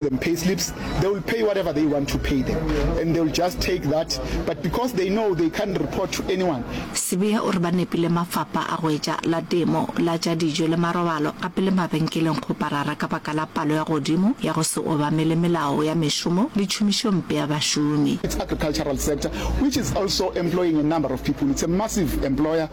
them pay slips they will pay whatever they want to pay them and they will just take that but because they know they can't report to anyone Sibiya o re ba nepile mafapha a go etša la temo la tša dijo le marobalo a pele mabenkeleng go parara ka baka la palo ya godimo ya go se obamele melao ya mešomo le tšhomišo mpe ya bašomi. Its agricultural sector which is also employing a number of people it's a massive employer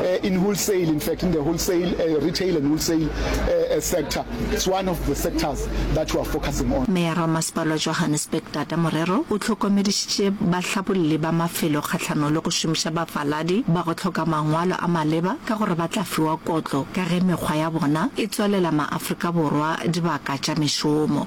uh, in wholesale, in fact, in the wholesale, uh, retail and wholesale uh, uh, sector. It's one of the sectors that we are focusing on. Mayor wa Masepala wa Johannesburg Tata Morero o tlhokomedišitše bahlabolli ba mafelo kgahlano le go šomiša bafaladi ba go tlhoka mangwalo a maleba ka gore ba tla fiwa kotlo ka ge mekgwa ya bona e tswalela maafrika borwa dibaka tša mešomo.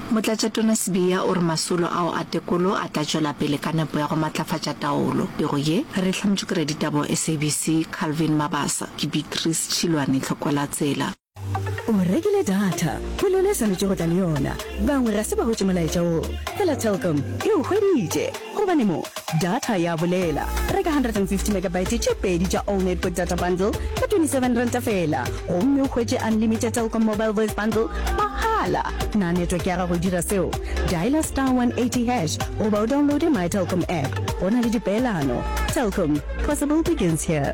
Motlatšatona Sibiya o re masolo ao a tekolo a tla tšwela pele ka nepo ya go matlafatša taolo. Pego ye, re e hlametšwe ke raditaba wa SABC, Calvin Mabasa. Ke Beatrice Tšhilwane Tlhokwelatsela. O rekile data, ke lona e swanetše go tla le yona. Bangwe ga se ba hwetše molaetša wo, fela Telkom e o hweditše. Gobane mo, data ya bolela. Reka 150 megabyte tše pedi tša Allnet Quick Data Bundle ka R27 feela gomme o hwetše unlimited Telkom Mobile Voice Bundle mahala. Na network ya gago e dira seo? Dialer star 180 hash goba o downloade My Telkom app. Go na le dipeelano. Telkom, possible begins here.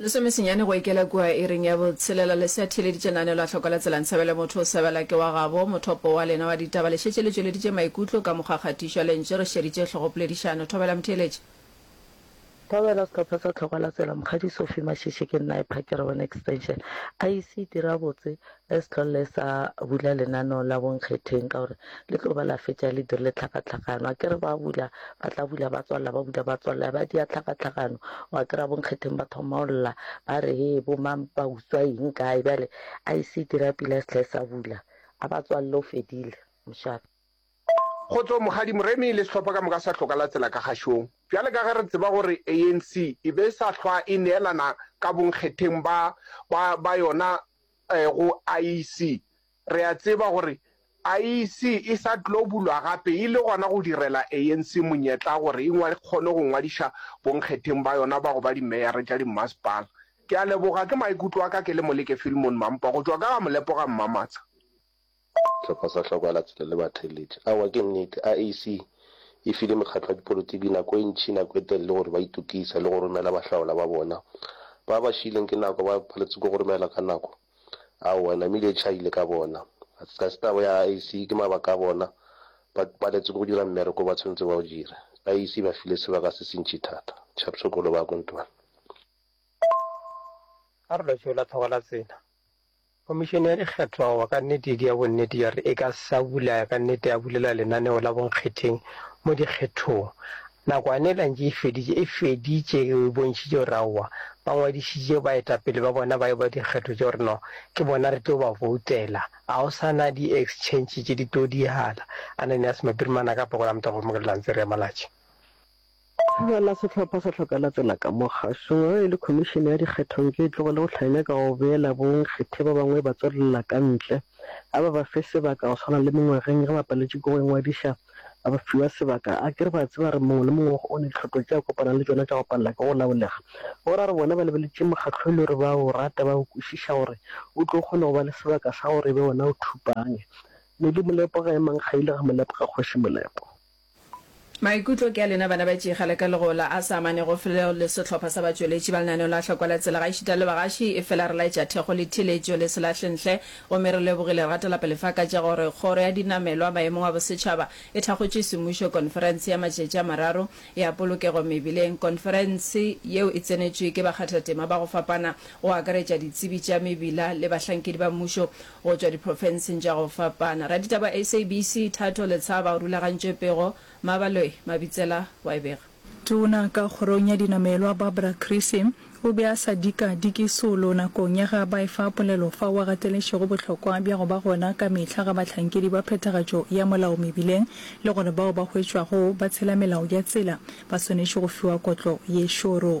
Lesome senyane go ikela kua iring ya botshelela, le se a theeleditše naanelo a hloka la tsela nsebele motho o sebela ke wa gabo, mothopo wa lena wa ditaba le šetše le tšweleditše maikutlo ka mokgwa kgatišo a lentše re šeditše hlogopoledišano. Thobela motheeletši. Thobela sehlopha sa tlhoka la tsela mokgadi Sophie Mashishi ke nna epa ke re wena extension IEC dira botse Ge sehlolo le sa bula lenaneo la bonkgetheng ka gore le tlo ba la fetša le dirile tlhakatlhakano, a ke re ba bula ba tla bula ba tswalela, ba bula ba tswalela, ba dia tlhakatlhakano, wa kry-a bonkgetheng ba thoma go lla ba re hee bo mang ba utswa eng kae, bjale a e se e dira pila sehla e sa bula a ba tswalele o fedile mošate. Kgotso Mokgadi Moremi le sehlopha ka moka sa hloka la tsela ka kgašong. Bjale ka ge re tseba gore ANC e be e sa hlwa e neelana ka bonkgetheng ba ba ba yona, go IEC. Re a tseba gore IEC e sa tlo bulwa gape e le gona go direla ANC monyetla gore e kgone go ngwadiša bonkgetheng ba yona ba go ba dimeyara tša dimmasepala. Ke a leboga. Ke maikutlo a ka ke le Moleke Filmon Mampa go tšwa ka ga Molepo ga Mmamatsha. Sehlopha sa Hlokoalatsela le Batheeletši. Aowa, ke nnete, IAC e file mekgatlo ya dipolotiki nako e ntši, nako e telele gore ba itokisa le go romela bahlaola ba bona. Ba ba šiileng ke nako, ba paletswe ke go romelwa ka nako. Aowa, namile e tšhaile ka bona. Ga se taba ya IAC, ke mabaka a bona. Ba paletswe ke go dira mmereko o ba tshwanetse ba o dire. IAC e ba file sebaka se sentši thata. Chapsokolo ba Kontwane. A re lwa tšeo la Tlhokoalatsela. Komišene ya Dikgetho aowa ka nnete ke ya bonnete ya gore e ka sa bula ka nnete ya bulela lenaneo la bonkgetheng mo dikgethong. Nakwane e lantše e feditše e feditše e bontšhitše gore aowa ba ngwadišitše baetapele ba bona ba eba dikgetho tša gore no ke bona re tlo ba voutela. A go sa na di exchange tše di tlo dihala. Ananias Mapirimana ka Phokola Motabo Mokelelantse re ya Malatši. Bjala sehlopha sa hloka lapela ka mo kgašong ge e le Khomišene ya Dikgethong ke e tlogele go hlanya ka go beela bonkgethe ba bangwe ba tswelela ka ntle a ba ba fe sebaka go swana le mengwageng ge ba paletše ke go ingwadiša ba ba fiwa sebaka a kere ba a tseba re mongwe le mongwe o ne tlhoto tše a kopana le tšona tša go palela ke go laolega go ra re bona ba lebeletše mokgatlo e le gore ba o rata ba o kwešiša gore o tlo kgone go ba le sebaka sa gore e be wona o thupange Neli Molepo ga e mang kgaile ga Molepo ga kgoši Molepo. Maikutlo ke a lena bana ba tšega le ka legola a sa amanego fleo le sehlopha sa batšweletši ba lenaneo la Hlokwa la Tsela gaešita le bagaši. Efela re laetša thekgo le theeletšo le selahlenhle gomme re lebogile re gatela pele fa ka tša gore Kgoro ya Dinamelwa Maemong a Bosetšhaba e thakgotše semmušo Konferense ya Matšatši a Mararo ya Polokego Mebileng. Konferense yeo e tsenetšwe ke bakgathatema ba go fapana go akaretša ditsebi tša mebila le bahlankedi ba mmušo Go tšwa diprofenseng tša go fapana, raditaba SABC Thato Letshaba o rulagantše pego, Mabaloe Mabitsela o a e bega. Tona ka kgorong ya dinamelwa Barbara Creecy o be a sa dika diki solo nakong ya ge a ba efa polelo fao a gateletšego bohlokwa bja go ba gona ka mehla ga bahlankedi ba phethagatšo ya molao mebileng le gore bao ba hwetšwago ba tshela melao ya tsela ba swanetše go fiwa kotlo ye šoro.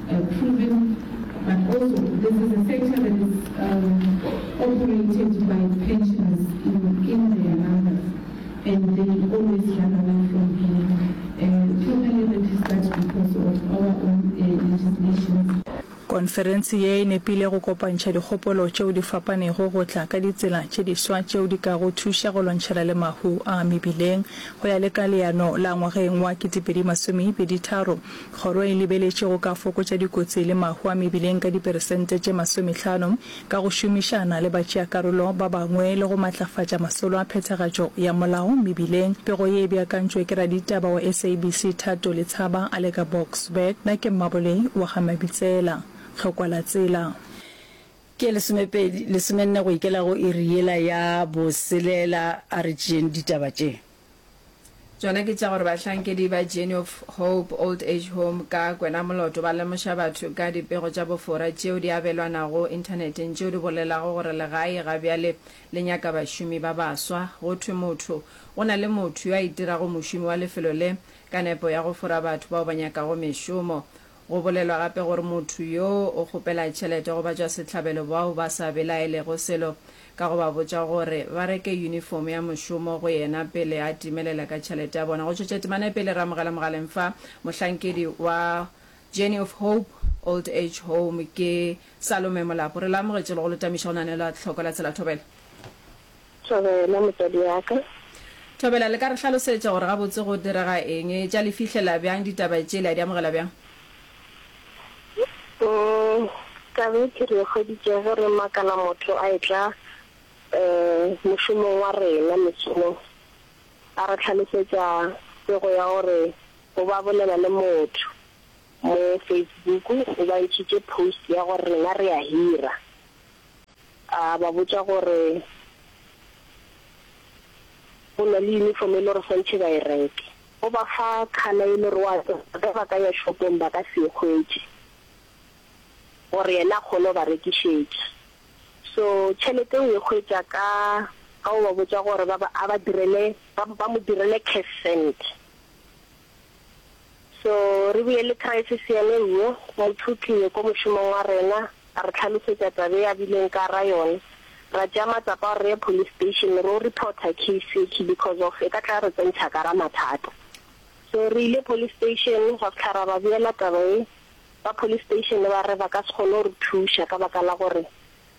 proven but also this is a sector that is operated by pensioners in their numbers and they always run away from being formally registered because of our own legislation. Konferense ye e nepile go kopantšha dikgopolo tšeo di fapanego go tla ka ditsela tše diswa tšeo di ka go thuša go lwantšhana le mahu a mebileng. Go ya le ka leano la ngwageng wa 2023, Kgoro e lebeletše go ka fokotša dikotsi le mahu a mebileng ka diperesente tše masomehlano ka go šomišana le batšeakarolo ba bangwe le go matlafatša masolo a phethagatšo ya molao mebileng. Pego ye e beakantšwe ke raditaba wa SABC Thato Letshaba a le ka Boksburg. Na ke mmabolei wa ga Mabitsela. Hlokwa la tsela. Ke lesomepedi, lesomenne go ikela go iri yela ya boselela. A re tšeeng ditaba tše. Tšona ke tša gore bahlankedi ba Journey of Hope Old Age Home ka kwenamoloto ba lemoša batho ka dipego tša bofora tšeo di abelwanago Inthaneteng tšeo di bolelago gore legae ga bjale le nyaka bašomi ba baswa. Go thwe motho go na le motho yo a itirago mošomi wa lefelo le ka nepo ya go fora batho bao ba nyakago mešomo. Go bolelwa gape gore motho yo o kgopela tšhelete go batšwasehlabelo bao ba sa belaelego selo ka go ba botša gore ba reke yunifomo ya mošomo go yena pele a timelela ka tšhelete ya bona. Go tšwetša temana pele, re amogela mogaleng fa mohlankedi wa Journey of Hope Old Age Home, ke Salome Molapo. Re le amogetše le go le tamiša go na ne la tlhoko la tsela thobela. Thobela, motswadi wa ka. Thobela, le ka re hlalosetša gore gabotse go direga eng? Etša le fihlela bjang ditaba tše? Le a di amogela bjang? Kabethe, re hweditše ge re makala motho a etla mošomong wa rena mesong, a re hlalosetša pego ya gore o ba bolela le motho mo Facebook, o ba ntšhitše post ya gore rena re a hira. A ba botša gore go na le uniform e le gore swantšhe ba e reke. O ba fa color e le gore o a tseba ge ba ka ya shopong ba ka se e hwetše gore yena a kgone go ba rekišetša. So tšhelete o e hwetša ka ka go ba botša gore ba ba a ba direle ba ba mo direle cash send. So, re bile le crisis yene yyo, mothuti yo ko mošomong wa rena a re hlalosetša taba e a bileng ka ra yona. Ra tšea matsapa a gore re ye police station ro reporter case ye key because of e ka tla ya re tsentšha ka ra mathata. So, re ile police station ra fihla ra ba beela taba ye, ba police station ba re ba ka se kgone go re thuša ka baka la gore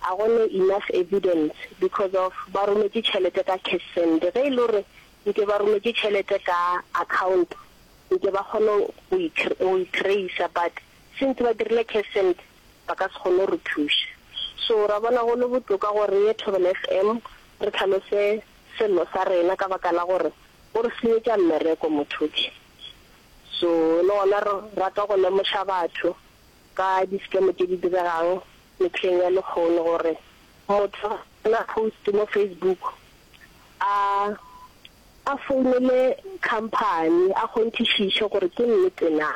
a go no enough evidence because of ba rometše tšhelete ka cash send ge e le gore nke ba rometše tšhelete ka account nke ba kgone go go e tracer but since ba dirile cash send ba ka se kgone go re thuša so ra bona go le botoka gore re ye Thobela FM re tlhalose sello sa rena ka baka la gore o re senyetša mmereko motho ke so le gona re rata go lemoša batho ka di-scam tše di diregang mehleng ya lekgono gore motho na post mo Facebook a a founele company a kgonthišiše gore ke nnete na,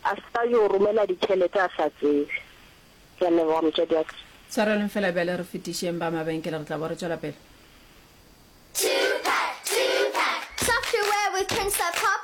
a se ka yo romela ditšhelete a sa tsebe. Ke a leboga motswadi wa ka. Swareleng fela bjale re fetišeng ba mabenkele re tla bo re tšwela pele. Tune pack, tune pack. Software with Prince of Pop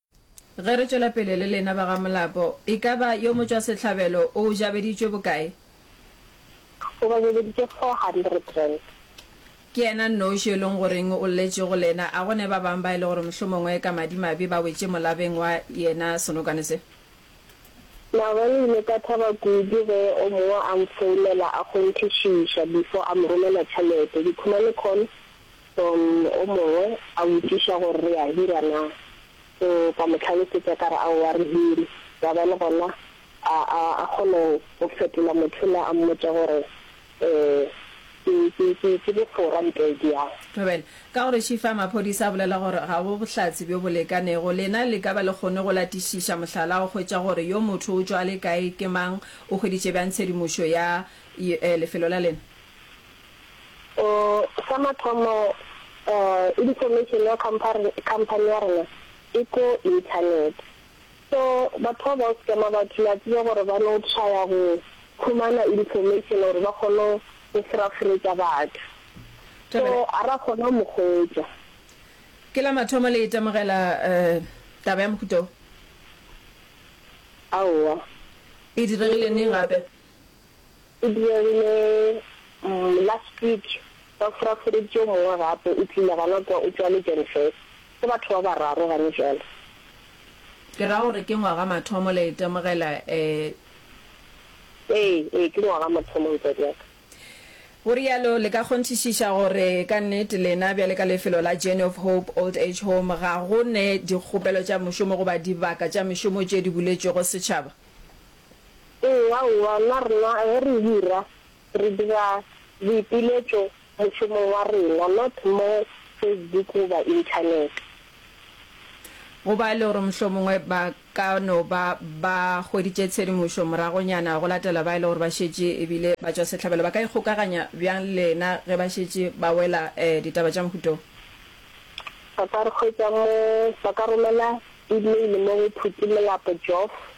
Ge re tšwela pele le lena ba ga Molapo, e ka ba yo motšwasehlabelo o o jabeditšwe bokae? O ba jabeditše four hundred rand. Ke yena nnoši yo e leng goreng o lletše go lena. A go ne ba bang ba e le gore mohlomongwe ka madimabe ba wetše molabeng wa yena senokwane se? Mara re ile ka thaba kudu ge o mongwe a nfounela a kgonthišiša before a mo romela tšhelete. Ke khona le khona Don o mongwe a botšiša gore re a hira na, so ka mo hlalosetša ka re, Aowa, re hire. Wa bona, gona a, a, a kgone go fetola motho yola a mmotša gore, Ee, ke, ke, ke, ke bofora mpeng ke yang. Thobela, ka gore Shifa, maphodisa a bolela gore ga go bohlatse bjo bo lekanego. Lena le ka ba le kgonne go latišiša mohlala wa go hwetša gore yo motho o tšwa le kae, ke mang, o hweditše bjang tshedimošo ya, y, lefelo la lena? Sa mathomo, information ya company ya rena e ko internet. So batho ba bao scammer batho, le a tseba gore ba no trya go humana information gore ba kgone go furafuretša batho. So a ra kgona go mo hwetša. Ke la mathomo le itemogela taba ya mohuta wo? Aowa. E diregile neng gape? E dirile last week ba foraforetše yo mongwe gape, o tlile gona kwa, o tšwa Legenfest. Ke batho ba bararo gane bjale. Ke ra gore ke ngwaga mathomo, la itemogela eh. Ee, ee, ke ngwaga mathomo motswadi wa ka. Go rialo, le ka kgonthišiša gore ka nnete lena bjale ka lefelo la Journey of Hope Old Age Home ga go ne dikgopelo tša mošomo goba dibaka tša mešomo tše di buletšwego setšhaba? Ee, aowa, nna rena ge re hira, re dira boipiletšo mošomong wa rena, not mo Facebook goba Internet. Go ba e le gore mohlomongwe ba ka no ba ba hweditše tshedimošo moragonyana go latela ba e le gore ba šetše e bile batšwasehlabelo, ba ka ikgokaganya bjang le lena ge ba šetše ba wela ditaba tša mohuta wo? Ba ka re hwetša mo, ba ka romela email mo go Phuti Molapo Geoff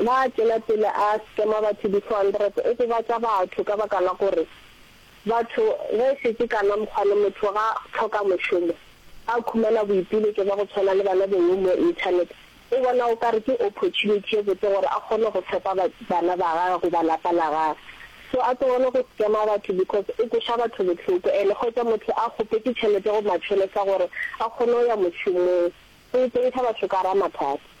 Na a tšwela pele a scammer batho di-400? O gobatša batho ka baka la gore batho ge e šetše kana mokgwane motho ga hloka mošomo, a khumana boipiletšo ba go tshwana le bana bowe mo internet, o bona o ka re ke opportunity ye botse gore a kgone go fepa bana ba gage goba lapa la gage. So a tlogele go scammer batho because o kweša batho bohloko and hwetša motho a kgopetše tšhelete go machonesa gore a kgone go ya mošomong. go iteisa batho ka ra mathata.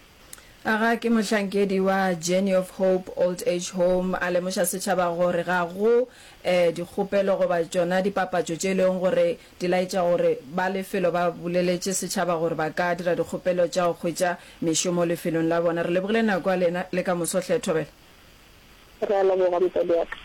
A ga ke mohlankedi wa Journey of Hope Old Age Home a lemoša setšhaba gore ga go eh dikgopelo goba tšona dipapatšo tše leng gore di laetša gore ba lefelo ba boleletše setšhaba gore ba ka dira dikgopelo tša go hwetša mešomo lefelong la bona. Re lebogile nako ya lena le ka moso hle Thobela. Re a leboga motswadi wa ka.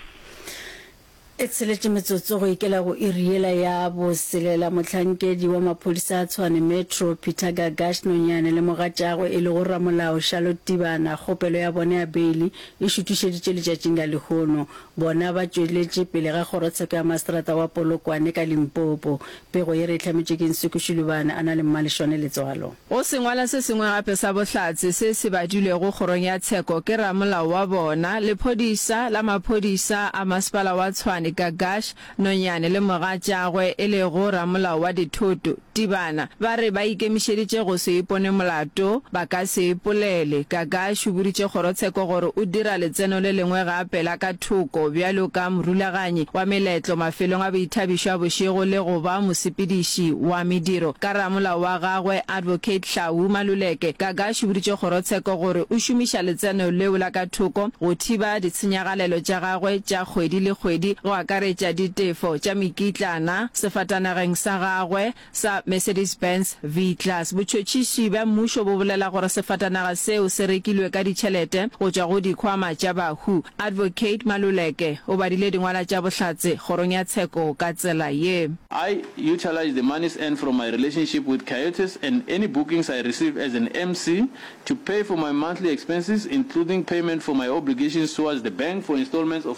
E tsheletše metsotso go ikela go iri yela ya boselela, mohlankedi wa maphodisa a Tshwane Metro, Peter Gagash Nonyane le mogatšagwe e lego ramolao Charlotte Tibana kgopelo ya bone ya beili e šutišeditše letšatšing la lehono. Bona ba tšweletše pele ga kgorotsheko ya maseterata wa Polokwane ka Limpopo. Pego ye re e hlametšwe ke Nsuku Shilubane a na le Mmaleshwane Letswalo. Go sengwala se sengwe gape sa bohlatse se se badilwego kgorong ya tsheko ke ramolao wa bona, lephodisa la maphodisa a masepala wa Tshwane, Gagash Nonyane le mogatšagwe e lego ramolao wa dithoto, Tibana, ba re ba ikemišeditše go se ipone molato, ba ka se ipolele. Gagash o boditše kgorotsheko gore o dira letseno le lengwe gape la ka thoko bjalo ka morulaganyi wa meletlo mafelong a boithabišo a bošego le go ba mosepediši wa mediro ka ramolao wa gagwe Advocate Hlawu Maluleke. Gagash o boditše kgorotsheko gore o šomiša letseno leo la ka thoko go thiba ditshenyagalelo tša gagwe tša kgwedi le kgwedi go akaretša ditefo tša mekitlana sefatanageng sa gagwe, sa Mercedes-Benz V-Class. Botšhotšhiši bja mmušo bo bolela gore sefatanaga seo se rekilwe ka ditšhelete go tšwa go dikhwama tša bahu. Advocate Maluleke o badile dingwala tša bohlatse kgorong ya tsheko ka tsela ye. I utilised the monies earned from my relationship with Coyotes and any bookings I receive as an MC to pay for my monthly expenses including payment for my obligations towards the bank for installments of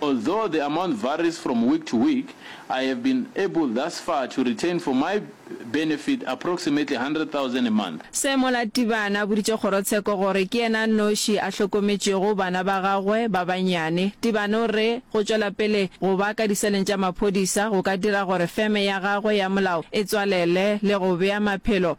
Although the amount varies from week to week, I have been able thus far to retain for my benefit approximately 100,000 a month. Seemo Latibane a boditše kgorotsheko gore ke yena a noši a hlokometšego bana ba gagwe ba bannyane. Tibane o re go tšwela pele go ba ka diseleng tša maphodisa go ka dira gore feme ya gagwe ya molao e tswalele le go bea maphelo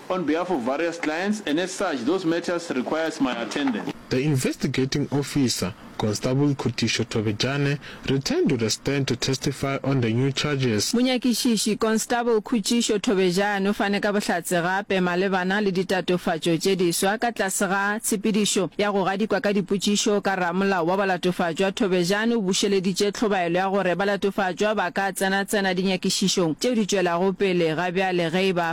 On behalf of various clients and as such those matters requires my attendance. The Investigating Officer, Constable Khutišo Thobejane, returned to the stand to testify on the new charges. Monyakišiši, Constable Khutišo Thobejane o fane ka bohlatse gape malebana le ditatofatšo tše diswa ka tlase ga tshepedišo ya go gadikwa ka dipotšišo ka ramolao wa balatofatšwa. Thobejane o bušeleditše tlhobaelo ya gore balatofatšwa ba ka tsenatsena dinyakišišong tšeo di tšwelago pele ga bjale ge e ba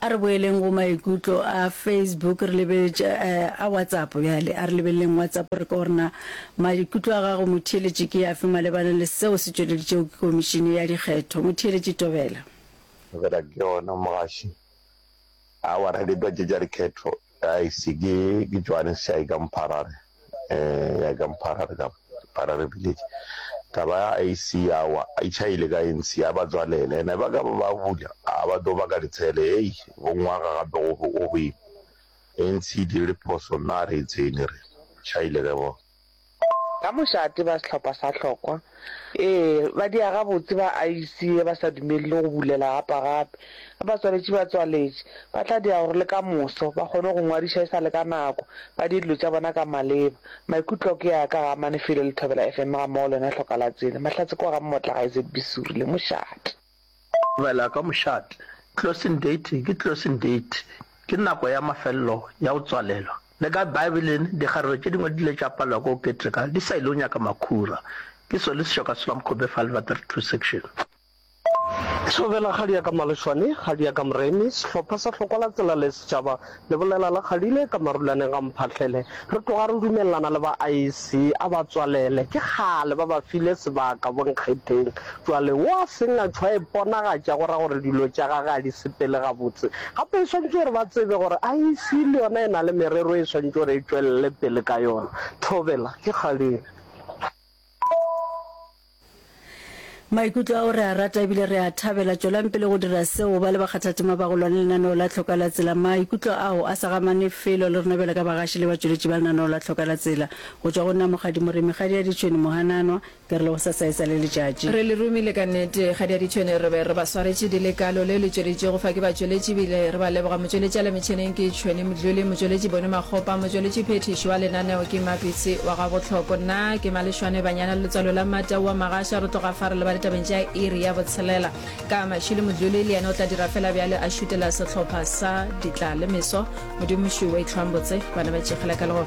A re boeleng go maikutlo a Facebook, re lebeletše a WhatsApp bjale. A re lebeleleng WhatsApp re ko rena maikutlo a gago motheeletši ke afe malebana le seo se tšweleditšego ke Komišene ya Dikgetho. Motheeletši Tobela. Tobela, Ke gona mogaši. Aowa, ra ditwa tše tša dikgetho. A ise ke ke Johannes ya ka Mpharare eh ya ka Mpharare ka Mpharare village ka ba AC ya wa a ichaile ka ANC ya ba tswalela ena ba ka ba bula a ba do ba ka ditshele hey go ngwaga gape go go be ANC di le phoso na re tsene re chaile ka bo Ka mošate ba sehlopha sa hlokwa, ee, ba dia gabotse ba aise ye ba sa dumelele go bulela gapa gape. Ge batswaletši ba tswaletše, ba tla dia gore le ka moso ba kgone go ngwadiša e sa le ka nako, ba die dilo tša bona ka maleba. Maikutlo ke a ka ga Amane File le Thobela FM gammogo le wena Hloka la Tsene, Mahlatse kwa ga Mmotlagae ZB Suri le mošate. Bela ka mošate, Closing date ke closing date, ke nako ya mafelelo ya go tswalelwa. Le ka Baebeleng, dikgarebe tše dingwe di ile tša palelwa ke go keteka di sa ile go nyaka makhura. Ke sone sešo ka Slam Kobe File Va 32 section. Thobela ga di ya ka Malešwane, ga di ya ka Moremi, sehlopha sa Hlokwalatsela le Setšhaba Lebolela la kgadile ka marulaneng ga mphahlele re tloga re dumelelana le ba IEC a ba tswalele ke kgale ba ba file sebaka bonkgetheng jwale wo a seng a tšhwa iponagatša go ra gore dilo tša gage a di sepele gabotse gape e swantše gore ba tsebe gore IEC le yona e na le merero e swantše gore e tšwelele pele ka yona Thobela ke kgadile. Maikutlo ao re a rata ebile re a thabela. Tšwelang pele go dira seo. Ba le bakgathatema ba go lwa le lenaneo la Tlhoka la Tsela. Maikutlo ao a sa gamane felo le rena bjale ka bagaši le batšweletši ba lenaneo la Tlhoka la Tsela. Go tšwa go nna Mokgadi Moremi, Kgadi ya Ditšhwene, Mohananwa, ke re le go sasaetsa le letšatši. Re le romile ka nnete. Kgadi ya Ditšhwene re be re ba swaretše di le kalo. Leo le tšweletšwego fa ke batšweletši ebile re ba leboga. Motšweletši a le. Tšheneng ke Tšhweni Mdluli, motšweletši Boni Makgopa, motšweletši phethiši wa lenaneo ke Mapitsi wa ga Botlhoko. Nna ke Malešwane Banyana le letswalo la Mmata wa Magasha. Re tloga fa re leba ditabeng tša iri ya botshelela ka Mashilo Mdluli, le yena o tla dira fela bjale a šutela sehlopha sa Ditla le Meso. Modimo Šwi wa itlhwang botse, bana ba tšegela ka lego.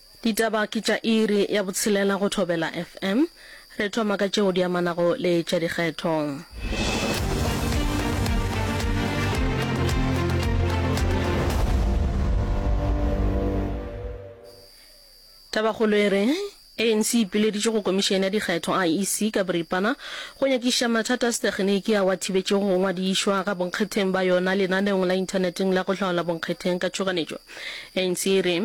Ditaba ke tša iri ya botshelela go Thobela FM. Re thoma ka tšeo di amanago le tša dikgetho. Tabakgolo e re ANC e ipileditše go komišene ya dikgetho, IEC, ka boripana go nyakišiša mathata a setegeniki ao a thibetšego go ngwadišwa ga bonkgetheng ba yona lenaneong la inthaneteng la go hlaola bonkgetheng ka tšhoganetšo. ANC e re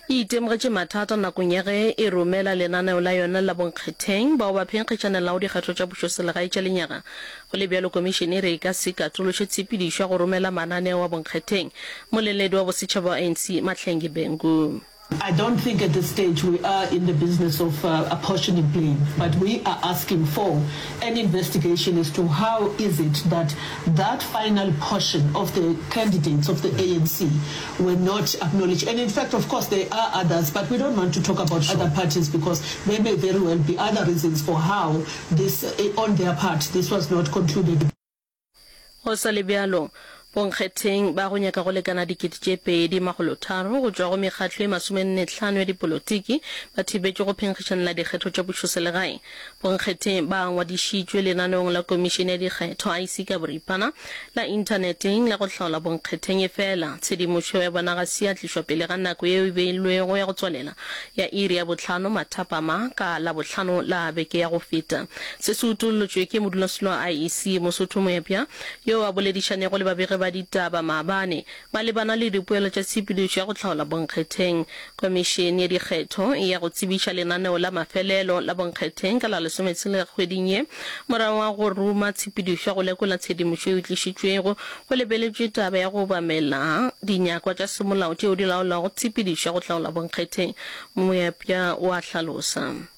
e itemogetše mathata nakong ya ge e romela lenaneo la yona la bonkgetheng bao ba phenkgetšanelago dikgetho tša pušoselegae tša lenyaga. Go le bjalo, Komišene e re e ka se ikatološe tshepedišo ya go romela mananeo a bonkgetheng. Moleledi wa bosetšhaba wa ANC, Mahlengi Bhengu. I don't think at this stage we are in the business of apportioning blame but we are asking for an investigation as to how is it that that final portion of the candidates of the ANC were not acknowledged and in fact of course there are others but we don't want to talk about other parties because there may very well be other reasons for how this on their part this was not concluded. Go sa le bjalo, bonkgetheng ba go nyaka go lekana dikete tše pedi makgolo tharo go tšwa go mekgatlo e masomenne tlhano ya dipolotiki ba thibetšwe go phenkgišanela dikgetho tša pušoselegae. Bonkgethe ba ngwadišitšwe lenaneong la Komišene ya Dikgetho, IC, ka boripana, la Inthaneteng, la go hlaola bonkgetheng. Efela, tshedimošo yeo ya bona ga se ya tlišwa pele ga nako yeo e beilwego ya go tswalela ya iri ya bohlano mathapama ka Labohlano la beke ya go feta. Se se utollotšwe ke modulasetulo wa IEC, Mosotho Moepya, yoo a boledišanego le babegi ba ditaba maabane, Malebana le dipoelo tša tshepedišo ya go hlaola bonkgetheng, Komišene ya Dikgetho e ya go tsebiša lenaneo la mafelelo la bonkgetheng ka la lesometshela kgweding ye. Morago ga go ruma tshepedišo ya go lekola tshedimošo e tlišitšwego, go lebeletšwe taba ya go obamela dinyakwa tša semolao tšeo di laolago tshepedišo ya go hlaola bonkgetheng, Moepša o a hlalosa.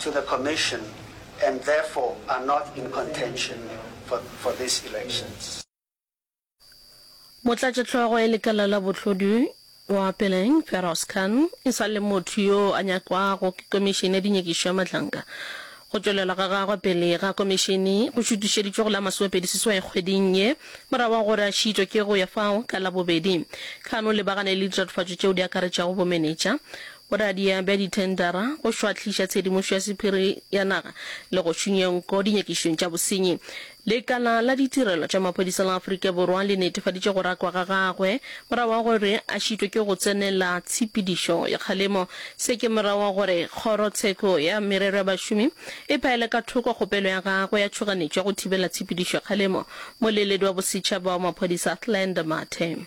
to the Commission and therefore are not in contention for for these elections. Motlatšehlogo e lekala la bohlodi wa Peleng, Feroz Khan, e sa le motho yo a nyakwago ke Komišene ya Dinyakišo ya Mahlanka. Go tšwelela ga gagwe pele ga Komišene go šutišeditšwe go la masomepedi seswai kgweding ye, morago ga gore a šiitšwe ke go ya fao ka Labobedi. Khan o lebagane le ditatofatšo tšeo di akaretšago bomenetša, Boradia bja dithendara, go šwahliša tshedimošo ya sephiri ya naga le go šunya nko dinyakišong tša bosenyi. Lekala la ditirelo tša maphodisa la Afrika Borwa le netefaditše go rakwa ga gagwe morago ga gore a šitwe ke go tsenela tshepedišo ya kgalemo. Se ke morago ga gore Kgoro tsheko ya Merero ya Bašomi e phaele ka thoko kgopelo ya gagwe ya tšhoganetšo ya go thibela tshepedišo ya kgalemo. Moleledi wa bosetšhaba wa maphodisa Athlenda Mathe.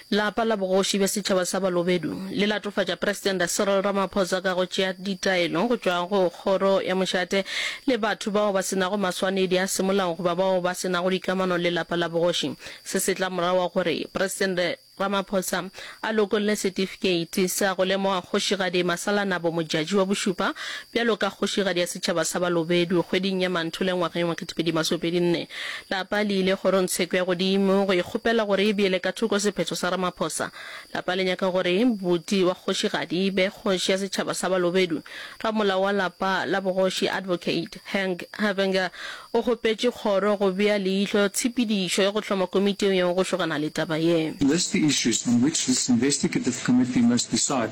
Lapa la bogoši bja setšhaba sa Balobedu le latofatša Presidente Cyril Ramaphosa ka go tšea ditaelo go tšwa go Kgoro ya Mošate le batho bao ba se nago maswanedi a semolao goba bao ba se nago dikamano le lapa la bogoši. Se se tla morago ga gore Presidente Ramaphosa a lokolle setifikeiti sa go lemoga Kgošigadi Masalanabo Modjadji wa Bošupa bjalo ka Kgošigadi ya Setšhaba sa Balobedu kgweding ya Manthole ngwageng wa 2024. Lapa le ile Kgorongtsheko ya Godimo go e kgopela gore e beele ka thoko sephetho sa Ramaphosa. Lapa le nyaka gore Buti wa Kgošigadi e be Kgoši ya Setšhaba sa Balobedu. Ramolao wa Lapa la Bogoši Advocate Hank Havinger o kgopetše Kgoro go bea leihlo tshepedišo ya go hloma komiti ya go šogana le taba ye. List the issues on which this investigative committee must decide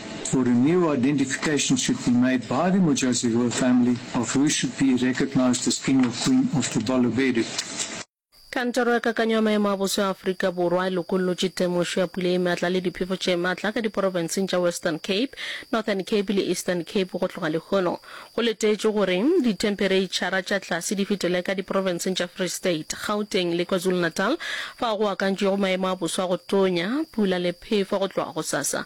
For a new identification should be made by the Modjadji royal family of who should be recognised as King or Queen of the Balobedu. Kantoro ya Kakanyo ya Maemo a Boso ya Afrika Borwa e lokollotše temošo ya pula ye matla le diphefo tše matla ka diporofenseng tša Western Cape, Northern Cape le Eastern Cape go tloga lehono. Go letetšwe gore dithempereitšhara tša tlase di fetele ka diporofenseng tša Free State, Gauteng le KwaZulu-Natal fao go akantšwego maemo a boso a go tonya, pula le phefo go tloga gosasa.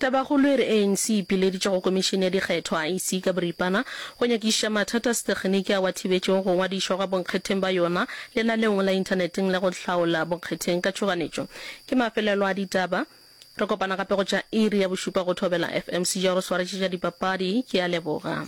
Tabakgolo e re ANC e ipileditše go Komišene ya Dikgetho, iec, ka boripana go nyakišiša mathata a setekgeniki ao a thibetšego go ngwadišwa gwa bonkgetheng ba yona lenaneong la inthaneteng la go hlaola bonkgetheng ka tšhoganetšo. Ke mafelelo a ditaba. Re kopana gape go tša iri ya bošupa go Thobela FM. Sejaro Swaretše tša dipapadi ke a leboga.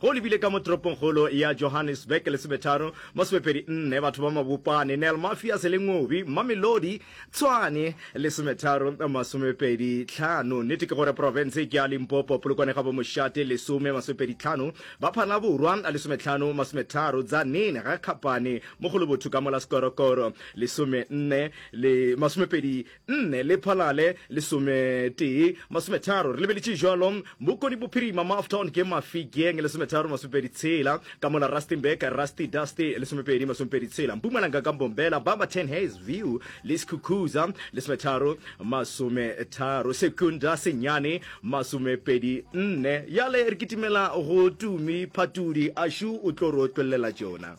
Ge o lebile ka mo toropongkgolo ya Johannesburg Lesometharo, mo sebepedi nne, batho ba Mabopane, Nel Mafias le Ngobi Mamelodi, Tshwane, Lesometharo masomepedi tlhano. Nnete ke gore profense ke ya Limpopo, Polokwane ga bo Moshate, lesome masomepedi tlhano, ba Phanaborwa, lesometlhano masometharo, Tzaneen ga Kgapane, Mogolobotho ka mo la Sekorokoro, lesome nne le masomepedi nne le phalale lesometee masometharo re lebeletše jalo bokoni bophirima mo aftown ke mafikeng lesometharo masomepedi tshela ka mola rustenburg rusty dusty lesomepedi masomepedi tshela mpumalanga ka mbombela ba ba ten hays view le sekhukhuza lesometharo masometharo sekunda senyane masomepedi nne yale re kitimela go tumi phatudi a shu o tlo ro tšwelela tšona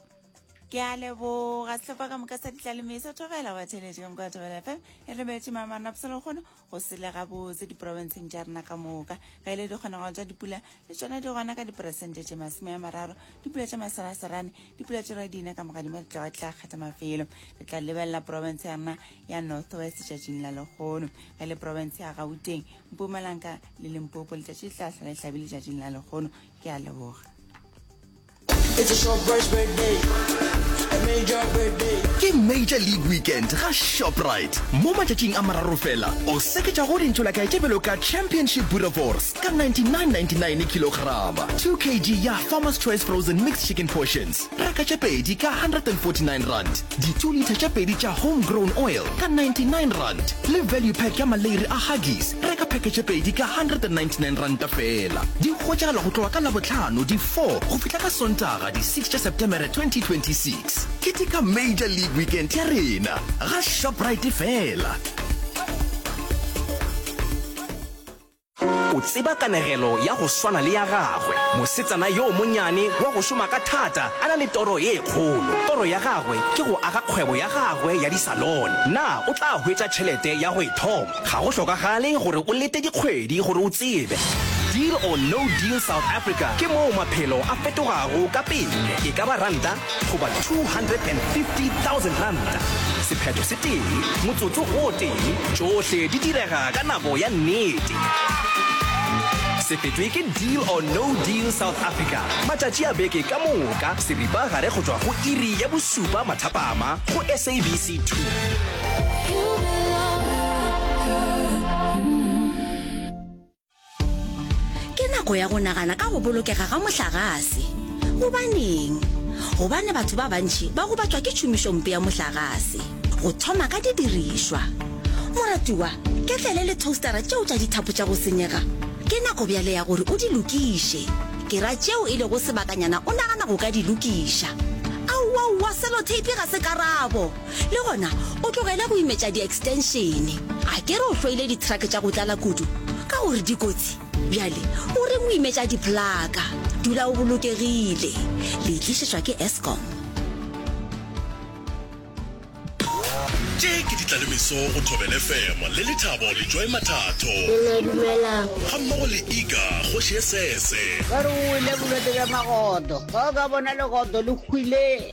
ke a leboga setlhopha ka moka sa ditlaleme sa thogela wa theletše ka moka thogela fm e re betse mamana pselo kgone go sele gabotse diporofenseng tša rena ka moka ga ile dikgonagalo tša dipula le tsona di gona ka diperesente tše masome ya mararo dipula tša maseraserane dipula tše ra dina ka moka dimo di tlawa tla kgetha mafelo re tla lebelela porofense ya rena ya north west tšatšing la lekgono ga le porofense ya gauteng mpumalanka le lempopo letšatši le tla sala le tlhabile tšatšing la lekgono ke a leboga ke major league weekend ga shoprite mo matšatšing a mararo fela o seketša go dintšho la kae tše bjalo ka championship burevors ka 9999 kilograma 2 kg ya farmers choice frozen mixed chicken portions reka tše pedi ka 149 rand Ditulitha tše pedi tša Home Grown Oil ka 99 rand le value pack ya maleiri a Huggies, reka pheke tše pedi ka 199 ranta feela. Di hwetšagala go tloga ka Labohlano di 4 go fihla ka Sontaga di 6 tša Septemere 2026. Ketika Major League Weekend ya rena ga Shoprite feela. O tseba kanegelo ya go swana le ya gagwe, mosetsana yo monnyane wa go šoma ka thata a na le toro ye kgolo. Toro ya gagwe ke go aga kgwebo ya gagwe ya disalone. Na o tla hwetša tšhelete ya go e thoma? Ga go hlokagale gore o lete dikgwedi gore o tsebe. Deal or No Deal South Africa ke moo maphelo a fetogago ka pele, e ka ba ranta, goba R250,000, sephetho se tee, motsotso o tee, tšohle di direga ka nako ya nnete. Se fetwe ke Deal or No Deal South Africa, matšatši a beke ka moka, seripagare go tšwa go iri ya bošupa mathapama go SABC 2. ke nako ya go nagana ka go bolokega ga mohlagase gobaneng gobane batho ba bantši ba go batšwa ke tšhomišompe ya mohlagase go thoma ka didirišwa moratiwa ketlele le toastera tšeo tša dithapo tša go senyega ke nako bjale ya gore o di lokiše ke ra tšeo e lego sebakanyana o nagana go ka di lokiša aowaowa seloteipi ga se karabo le gona o tlogele go imetša di-extenšene a ke re o hloile dithrake tša go tlala kudu ka gore dikotsi bjale o reng o imetša diplaka dula o bolokegile le tlišetšwa ke escom tše ke ditlalemeso go thobele femo le lethabo le joy mathatho ga mmogo le ega kgoši e sese ba re o ile bolwetse bja magodo ba o ka bona legodo le hwile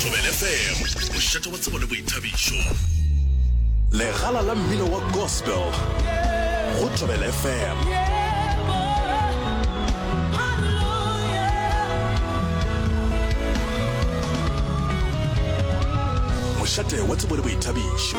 Thobelfm, mošate wa tsebo le boithabišo. Legala la mmino wa gospel go Thobelfm. Mošate wa tsebo le boithabišo.